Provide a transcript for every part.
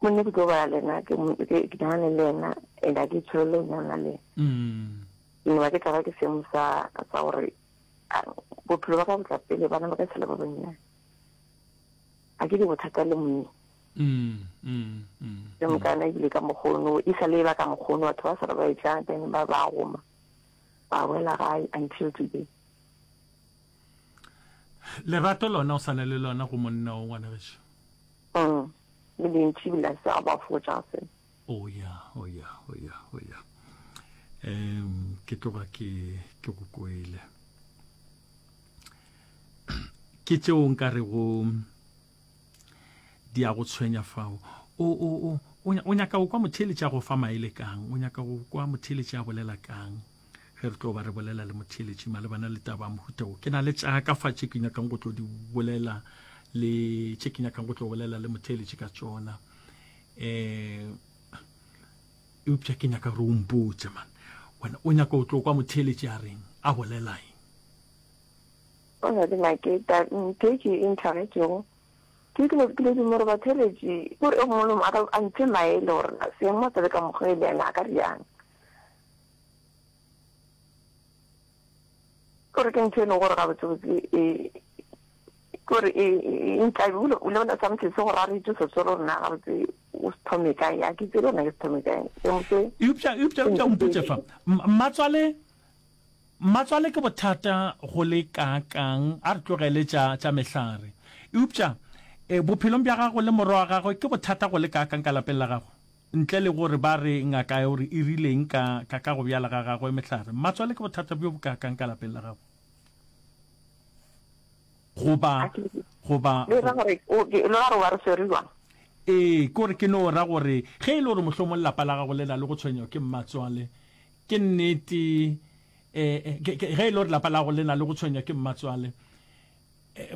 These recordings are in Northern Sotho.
Gomme ke tlo bala lena, ke nagane lena, and a ke tshwelele go nyana le. Nna ke tla ba ke seng sa sa gore bophelo ba ka botla pele bana ba ka sele ba bonnyane. A ke di bothata le monna. Ke mokana ebile ka mokgono, e sa le ba ka mokgono batho ba sala ba e tla then ba ba goma. Ba wela gae until today. Lerato lona o sane le lona go monna o ngwana gešo. Mm. Le dintši bile se a ba fotša se. O ya, o ya, o ya, o ya. Em ke tloga ke ke go koile. Ke tšeo nka re go di a go tshwenya fao o, o, o, o, o nyaka go kwa motheeletši a go fa maele kang o nyaka go kwa motheeletši a bolela kang ge re tlo ba re bolela le motheeletši malebana le taba mohuta o ke na le tšaka fa tše ke nyakang go tlo di bolela le tše ke nyakang go tlo bolela le motheeletši ka tsona um eupša ke nyaka gore o mpotse man wena o nyaka go tlo kwa motheeletši a reng a bolelaeng O sa di nyake ta nke ke e nthagetšego. Ke ke le dikile dimo gore batheeletši gore e gongwe le mo a ka a ntše maele gore na se mo tsabe ka mokgwa e le yena a ka riang. Gore ke ntho e leng gore ga botse botse e gore e e ntlabe o le bona sa motse se go ra re itse se gore na ga botse o se thome ka ya ke tsere ona ke se thome ka ya motse. Eupša eupša eupša o mpetše fa mmatswale Mmatswale ke bothata go le kaakang, a re tlogele tša tša mehlare. Eupša e, bophelong bja gago le morwa wa gagwe ke bothata go le kaakang ka lapeng la gago, ntle le gore ba re ngaka ya gore e rileng ka, ka, ka go bjala ga gagwe mehlare. Mmatswale ke bothata bjo bo kaakang ka lapeng la gago. Goba, A ke le, goba, le ra go, gore, o, ke, le ra gore wa re swere bjang? ee, ke gore ke no ra gore ge e le gore mohlomong lapa la gago le na le go tshwenywa ke mmatswale, Ke nnete, ge e le gore lapa lago le na le go tshwenywa ke mmatswale,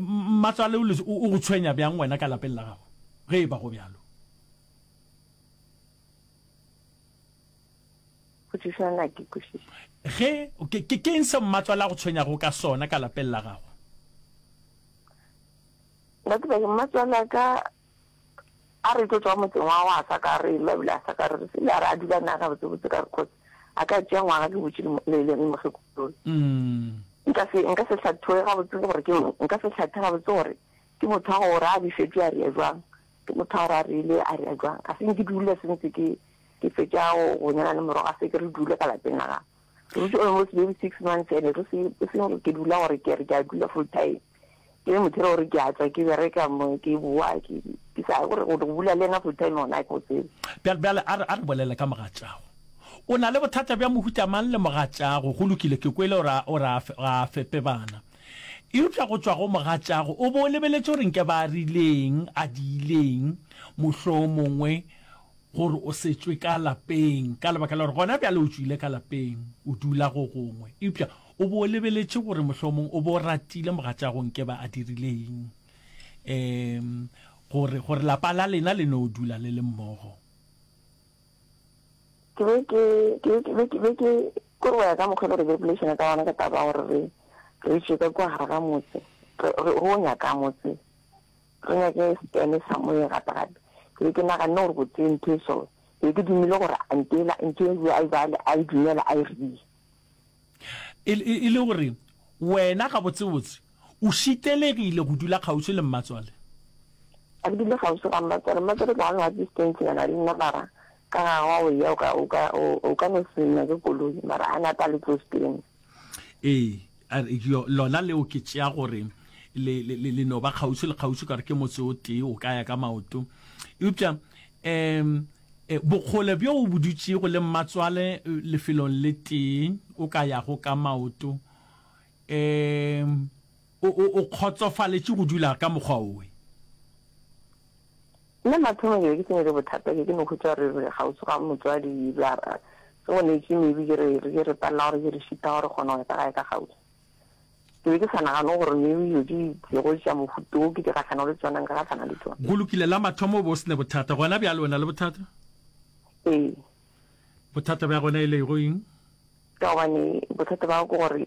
mmatswale o go tshwenya bjang wena ka lapeng la gago, ge e ba go bjalo? Ge, ke, ke eng seo mmatswale a go tshwenyago ka sona ka lapeng la gago? A re tlo tšwa motseng wa go a sa ka re elwa ebile a sa ka re re sele a re a dula na ga botse botse ka re kgosi a ka tšea ngwaga ke botše le le le mokgekolo nka se nka se hlathoe ga botse gore ke nka se hlathe ga botse gore ke motho wa gore a di fetšwe a re ya jwang ke motho wa gore a re ile a re ya jwang a se nke dula se ntse ke ke fetša go nyana le morogo a se ke re dule ka lapeng la gago Re dutše almost maybe six months and re se e seng gore ke dula gore ke re ke a dula full time ke be motho gore ke a tswa ke bereka mo ke boa ke ke sa gore go bula le ena full time ona ke go tsebe bjale bjale a re a re bolele ka mogatšago o na le bothata bja mohuta mang le mogatšago go lokile ke kwele ora ora ga a fepe bana eupša go tswa go mogatšago o bo o lebeletše gore nke ba rileng a diileng mohloo mongwe gore o se tšwe ka lapeng ka lebaka la gore gona bjale o tšwile ka lapeng o dula go gongwe eupša o bo o lebeletše gore mohlomong o bo o ratile mogatšago nke ba a dirile eng um gore gore lapa la lena le no dula le le mmogo ke be ke ke ke be ke be ke gore wa ya ka mokgwa gore revelation ka gona ka taba gore re re tšwe ka kwa gare ga motse re o nyaka motse Tlo nyake scan sa moyeng gape gape. Ke be ke naganne gore go tee ntho e so. Ke be ke dumile gore a ntela e ntše e a bale a e dumela a e rile. E, e, e le gore wena gabotsebotse o šitelegile go dula kgauswi le mmatswale? A ke dule kgauswi ga mmatswale. Mmatswale ke gona ga distance nyana le nna mara ka ga wa o ya o ka, o ka, o, o ka no se nyake koloi mara a ne a tla le close to le nna. ee lona leo ke tšea gore le, le, le, le no ba kgauswi le kgauswi kare ke motse o tee o ka ya ka maoto eupša um bokgole bjo o bodutšego le mmatswale lefelong le tee o ka yago ka maoto um O, o, o kgotsofaletše go dula ka mokgwa owe. Nna mathomo ke be ke tsenye le bothata bje ke no hwetša gore re kgauswi ga motswadi ebe a re ge go netše maybe ke re ke re palela gore ke re šita gore kgona go eta gae ka kgauswi. Ke be ke sa nagane gore maybe dilo di tlego tša mohuta wo ke di gahlana le tsona nka gahlana le tsona. Go lokile, la mathomo o be o se ne bothata, gona bjale o na le bothata? Ee. Bothata bja gona e lego eng? Ka gobane bothata bja go ke gore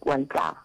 kua ntlago.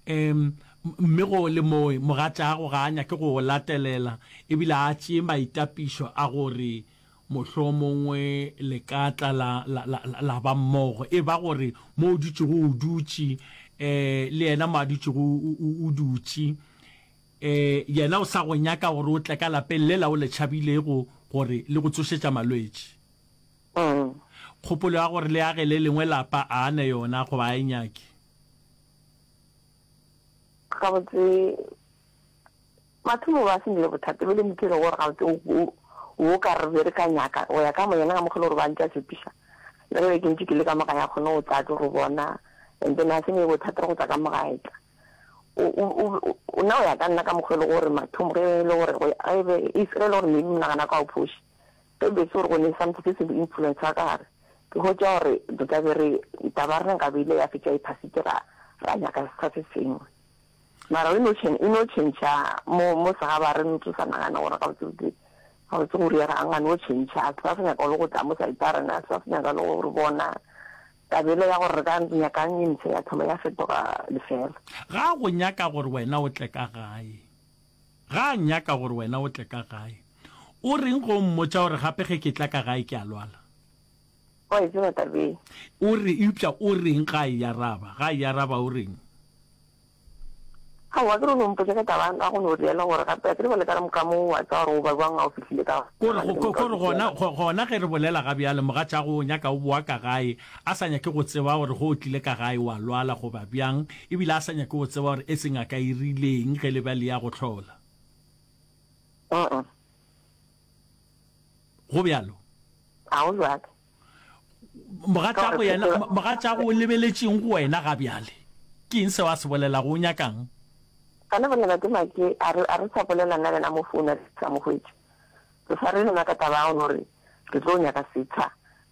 Em, mme go le moe mogatšaago ga a nyake go go latelela e bile a tšee maitapišo a gore mohlomongwe le ka tla la, la, la, la, la ba mmogo. E ba gore mo o dutšego o dutše, eh, le yena mo a dutšego o, o, o dutše. Eh, yena o sa go nyaka gore o tle ka lapeng lela o le tšhabilego gore le go tsošetša malwetši. Kgopolo ya gore le age le lengwe lapa a ne yona goba a e nyake? Gabotse, mathomo ba se nile bothata e be le motho e le gore gabotse o ka re be re ka nyaka go ya ka mo yena ka mokgwa le gore ba ntse a tšepiša le ge ke ntse ke le ka mogae a kgone go tla tlo re bona and then a se ne bothata re go tla ka mogae tla o na o ya ka nna ka mokgwa e le gore mathomo ge e le gore ge e le gore maybe monagana ka o phoši Ge bese gore go ne something se se le influencer ka gare, ke hwetša gore re tla be re, taba ya rena nka be ile ya fetša e phasitše ra, ra nyaka setsha se sengwe. Mara e no change, e no change-a mo, mo segabareng o ntse o sa nagana gore gabotsebotse, gabotse go direga'ng, a no change-a. A se ba sa nyaka le go tla mo side ya rena, a se ba sa nyaka le go re bona. Taba ele ya gore re ka nyaka'ng e ntshe ya thoma ya fetoga lefela. Ga a go nyaka gore wena o tle ka gae. Ga a nyaka gore wena o tle ka gae. O reng ge o mmotša gore gape ge ke tla ka gae ke a lwala? O a e tseba taba ye. O re, eupša o reng ga a e araba? Ga a e araba o reng? Aowa, ke re o no mpotša ka taba ya go no rialo gore gape a ke re bjale ka mokamoo o a tseba gore o ba bjang ga o fihlile ka. Ko re, ko re gona, gona ge re bolela ga bjale mogatšago o nyaka o boa ka gae, a sa nyake go tseba gore ge o tlile ka gae wa lwala goba bjang e bile a sa nyake go tseba gore etse ngaka e rileng ge le ba le ya go hlola. Uh-uh. Go bjalo? Ga go bjalo. Mogatšago yena, mogatšago o lebeletšeng go wena ga bjale? Ke eng seo a se bolelago, o nyakang? Ka lebelela ke make, a re, a re sa bolela nna lena mo founa sa mohwetši. Re swarelena ka taba ya gore re tlo nyaka setsha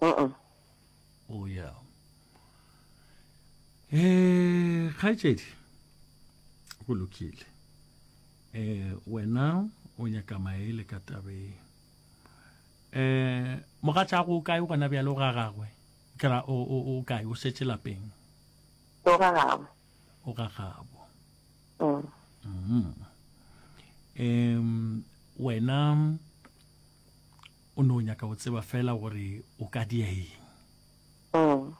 Uh-uh. Oh yeah. Eh, kgaetšedi. Go lokile. Eh, wena o nyaka maele ka tabeng. Eh, mogatša go kae gona bjale o ga gagwe? Ke ra o o o kae o setse lapeng? O ga gagwe. O ga gabo. Mm. Mm. Em wena O ne o nyaka go tseba fela gore o ka dia eng. Mm.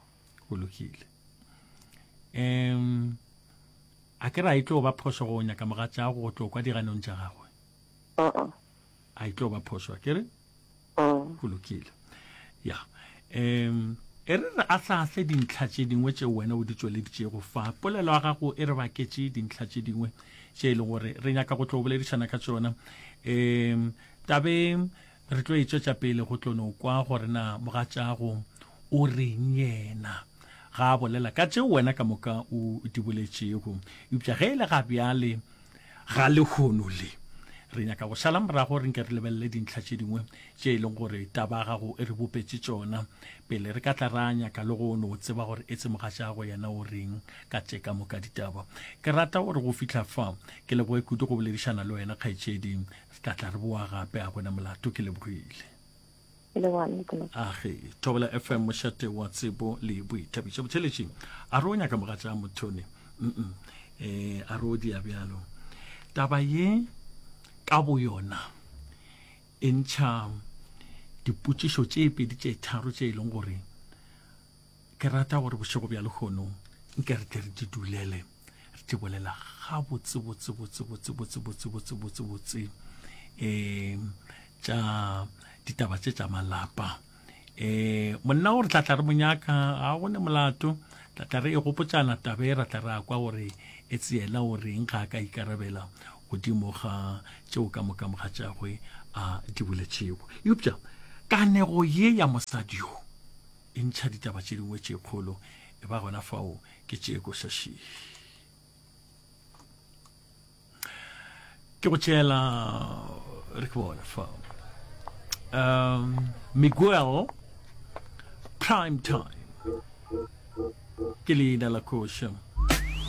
Go lokile. Em, a ke ra e tlo ba phoso go nyaka mogatšago go tlo kwa diganong tša gagwe. Mm. A e tlo ba phoso a kere? Mm. Go lokile. Ya. Em, e re re ahlaahle dintlha tše dingwe tše wena o di tšweleditšego fa polelo ya gago e re baketše dintlha tše dingwe tše e le gore re nyaka go tlo boledišana ka tšona um Tabeng re tlo e tšwetša pele go tlo no kwa gore na mogatšago o reng yena ga a bolela ka tšeo wena ka moka o di boletšego. Eupša ge e le ga bjale ga lehono le, re nyaka go šala morago re nke re lebelele dintlha tše dingwe tše e leng gore taba ya gago e re bopetše tšona pele re ka tla ra nyaka le go no tseba gore etse mogatšago yena o reng ka tše ka moka ditaba. Ke rata gore go fihla fa ke leboge kudu go boledišana le wena kgaetšedi. ka tla re boa gape a bona molato ke lebogile age thobela fm mošate wa tsebo le boithabišo botheletši a re o nyaka mogatša a mothone um eh, a re o dia bjalo taba ye ka bo yona e ntšha dipotšišo tše pedi tše tharo tše e leng gore ke rata gore bošego bja lehono nke re tle re di dulele re tlo bolela ga botse botse botse botse botse botse botse botse botse um tša ditaba tše tša malapa um monna o re tlatla re monyaka ga go ne molato tlatla re e gopotšana taba e ra tla re a kwa gore e tse yena o reng ga a ka ikarabela godimo ga tšeo ka moka moga tšagwe a di boletšego eupša kanego ye ya mosadi yo e ntšha ditaba tše dingwe tše kgolo e ba gona fao ke tšee ko šašing ke go tšeela re ke bona fa um miguel prime time ke leina la koša